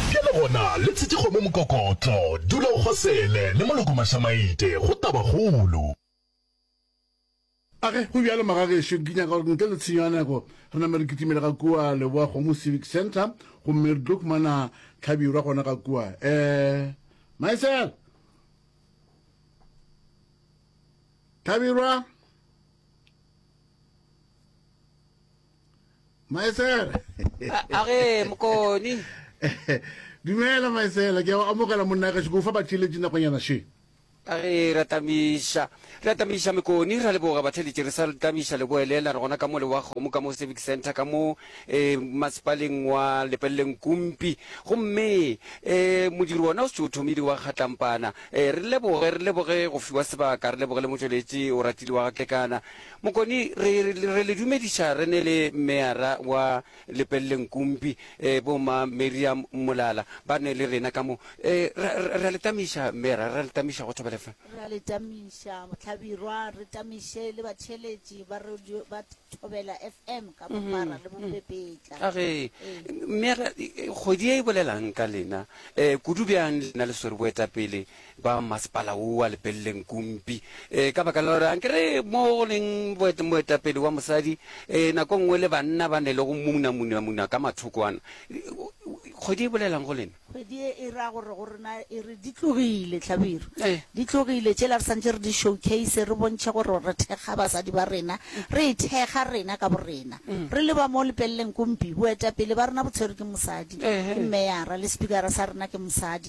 Bjale gona, le tshetše kgomo mokokotlo. Dula o kgosele, le moloko mašamaite, go tabakgolo. Age, go bjalo, magagešo, ke nyaka gore ntle le tshenyo ya nako re name re kitimele ga kua Leboakgomo Civic Centre gomme re tlo humana hlabirwa gona ga kua. Um, Maesela! Hlabirwa! maesela a ge mokoni dumela maesela ke a amogela monna gašo ke o fa batheeletši nakonyana še a re re atamiša re atamiša mekoni ra leboga batheeletši re sa tamiša leboelela re gona ka mo le wa kgomo ka mo civic center ka mo um masepaleng wa lepeleleng kumpi gomme um modiri wona o setse o thomile wa kgatlampana um re leboge re leboge go fiwa sebaka re leboge le motšweletši o ratile wa gatlekana Mokoni, re, re le dumediša re ne le Meyara wa Lepelleng Kumpi, eh, bo ma Miriam Molala, ba ne le rena ka mo. Eh, ra, ra, ra le tamiša, Meyara, ra le tamiša go thobela fa. Ra le tamiša, Mohlabirwa, re tamiše le batheeletši ba radio ba Thobela FM ka bophara le bopepetla. A ge, Ee. Meyara, kgwedi ye e bolelang ka lena, eh, kudu bjang lena le swere boetapele ba masepala wo wa lepeleleng kumpi e ka baka la gore anke re mo go leng moetapele wa mosadi e nako nngwe le banna ba ne le go muna muna muna ka mathoko ana kgwedi e bolelang go lena kgwedi e e ra gore go rena e re di tlogile tlhabiro eh. di tlogile tšela re santse re di showcase re bontšhe gore re thekga basadi ba rena mm. re e thekga rena ka borena mm. re le ba mo lepeleleng kumpi boetapele ba rena bo tshwere ke mosadi ke mmeyara le speakera sa rena ke mosadi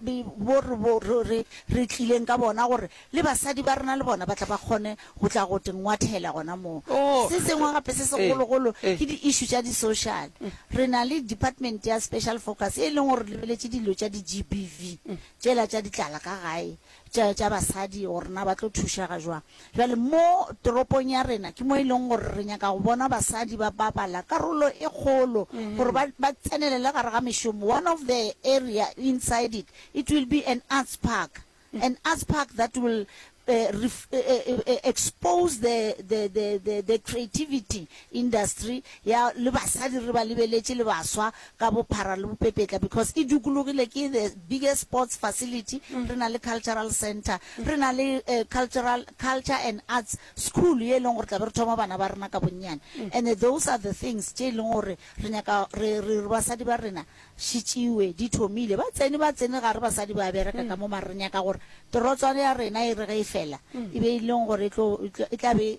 bo re, bo re, re, re tlileng ka bona, gore le basadi ba rena le bona ba tla ba kgone go tla go te ngwathela gona moo. Oh, Se sengwe gape se eh, segologolo eh. ke di-issue tša di-social. Re na le department ya special focus e leng gore re lebeletše dilo tša di-GBV, tšela tša ditlala ka gae, tša tša basadi, gore na ba tlo thušega jwang. Bjale, mo toropong ya rena, ke mo e lego gore re nyaka go bona basadi ba bapala karolo e kgolo, gore ba, ba tsenelele gare ga mešomo. One of the area inside it, it will be an arts park. An arts park that will uh, ref, uh, uh, expose the, the, the, the, the creativity industry ya le basadi re ba lebeletše le baswa ka bophara le bopepetla because e dukulogile ke the biggest sports facility re na le cultural centre re na le cultural culture and arts school ye e leng gore tla be re thoma bana ba rena ka bonnyane and those are the things tše e leng gore re nyaka re re basadi ba rena she tšewe di thomile ba tsene ba tsene gare basadi ba bereka ka mo mare re nyaka gore terotswana ya rena e re ge e fela e be e leng gore e tlo e tla be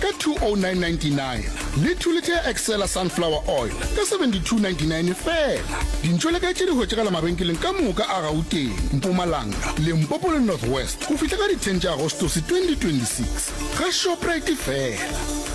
ka 20999 le 2 liter ya Excella Sunflower Oil ka 7299 fela. Dintšo le ka tše di hwetšagala mabenkeleng ka moka a Gauteng, Mpumalanga, Limpopo le North West go fihla ka di 10 tša Agostose 2026. Ga Shoprite fela.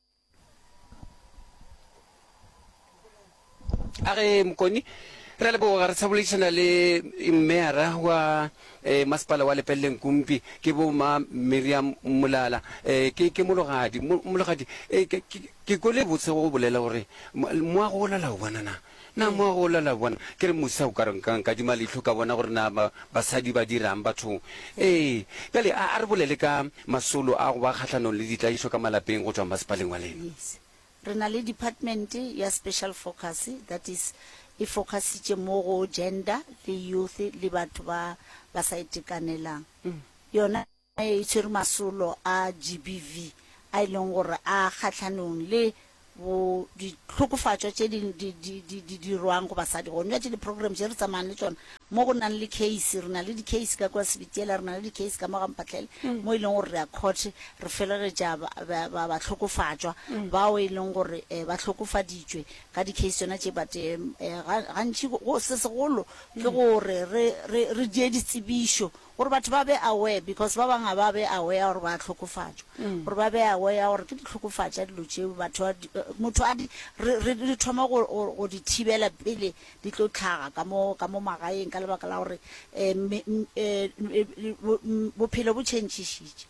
a re mokoni re a leboga re tshaboledišana le mmeyara wa um masepala wa lepeleleng kumpi ke bo ma miriam molala um ke ke mologadi mologadi um ke kwele botse go bolela gore moago o lala o bonanang Na mo go lala bona? Ke re, Musa, o ka re nka nka dima leihlo ka bona gore na ba, basadi ba dirang bathong? Ee. Bjale a, a re bolele ka masolo a go ba kgahlanong le ditlaišo ka malapeng go tšwa masepaleng wa lena. Yes. Re na le department ya special focus, that is, e focusitše mo go gender le youth le batho ba ba sa itekanelang. Yona. e tšere masolo a GBV a e leng gore a kgahlanong le bo dihlokofatšwa tše di dirwang go basadi. Gone bja tše di-program tše re tsamayang le tšona mo go nang le case, re na le di-case ka kua Sebitiela, re na le di-case ka mo ga Mpatlele, mo e leng gore re ya court re felegetša bahlokofatšwa bao e leng gore ba hlokofaditšwe ka di-case tšona tše. But gantši se segolo ke gore re die ditsebišo gore batho ba be aware because ba bangwe ga ba be aware ya gore ba a hlokofatšwa gore ba be aware ya gore ke di hlokofatša dilo tšeo batho ba di- eh, motho a di- re re- re thoma go go- go di thibela pele di tlo tlhaga ka mo ka mo magaeng ka lebaka la gore um bophelo bo tšhentšhišitše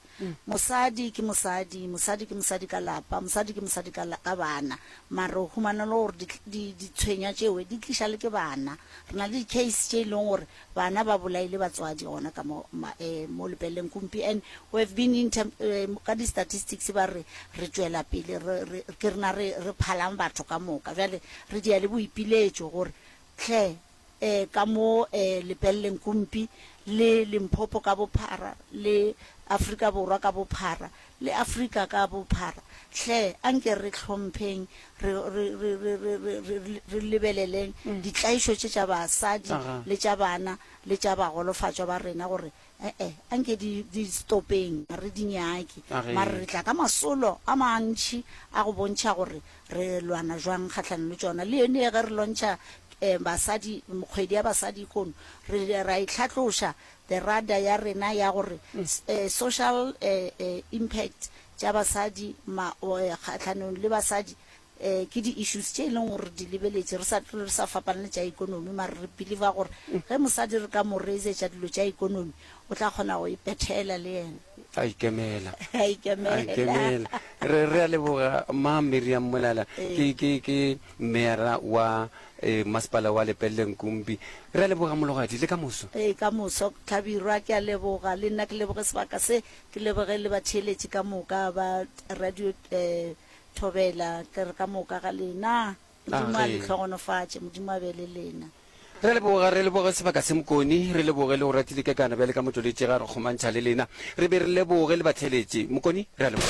Mosadi ke mosadi, mosadi ke mosadi ka lapa, mosadi ke mosadi ka ka bana. Mara o humana e le gore di, ditshwenywa tšewe di tliša le ke bana. Re na le di-case tše e leng gore bana ba bolaile batswadi gona ka mo, um mo lepeleng kumpi. And we have been inter, um ka di-statistics ba re re tšwela pele, re, re, ke rena re, re phalang batho ka moka. Bjale re dia le boipiletšo gore Tlhe e ka mo e lepelleng Kumpi le Limpopo ka bophara le Afrika Borwa ka bophara le Afrika ka bophara. Tlhe a nke re hlompheng re, re, re, re, re, re, re, re lebeleleng ditlaišo tše tša basadi le tša bana le tša bagolofatšwa ba rena gore Ee, a nke di, di stopeng, ga re di nyake. A ge. Mara re tla ka masolo a mantši a go bontšha gore re lwana jwang kgahlano le tšona. Le yone ge re lontšha um basadi, kgwedi ya basadi kono, re ra e tlhatloša the radar ya rena ya gore s- eh, social eh, eh, impact tša basadi ma, o, eh, kgahlano le basadi Ee, ke di-issues tše e leng gore re di lebeletše, re sa tlo re sa fapana le tša ekonomi, mara re believer gore ge mosadi re ka mo raisetša dilo tša ekonomi, o tla kgona go ipethela le yena. A ikemela. A A ikemela. ikemela. Re re a leboga Mma Miriam Molala Ee. ke ke ke meyara wa eh, masepala wa Lepelle Nkumbi. Re a leboga mologadi le ka moso. Ee, ka moso Tlhabirwa, ke a leboga le nna, ke leboge sebaka se, ke leboge le batheeletši ka moka ba radio eh, Thobela, ke re ka moka ga lena. Modimo a le hlogonofatše, Modimo a be le lena. Re leboga, re leboge sebaka se Mokoni, re leboge le go ratile ka kana bjale ka Motloletši ge a re kgomantšha le lena. Re be re leboge le batheeletši. Mokoni, re a leboga.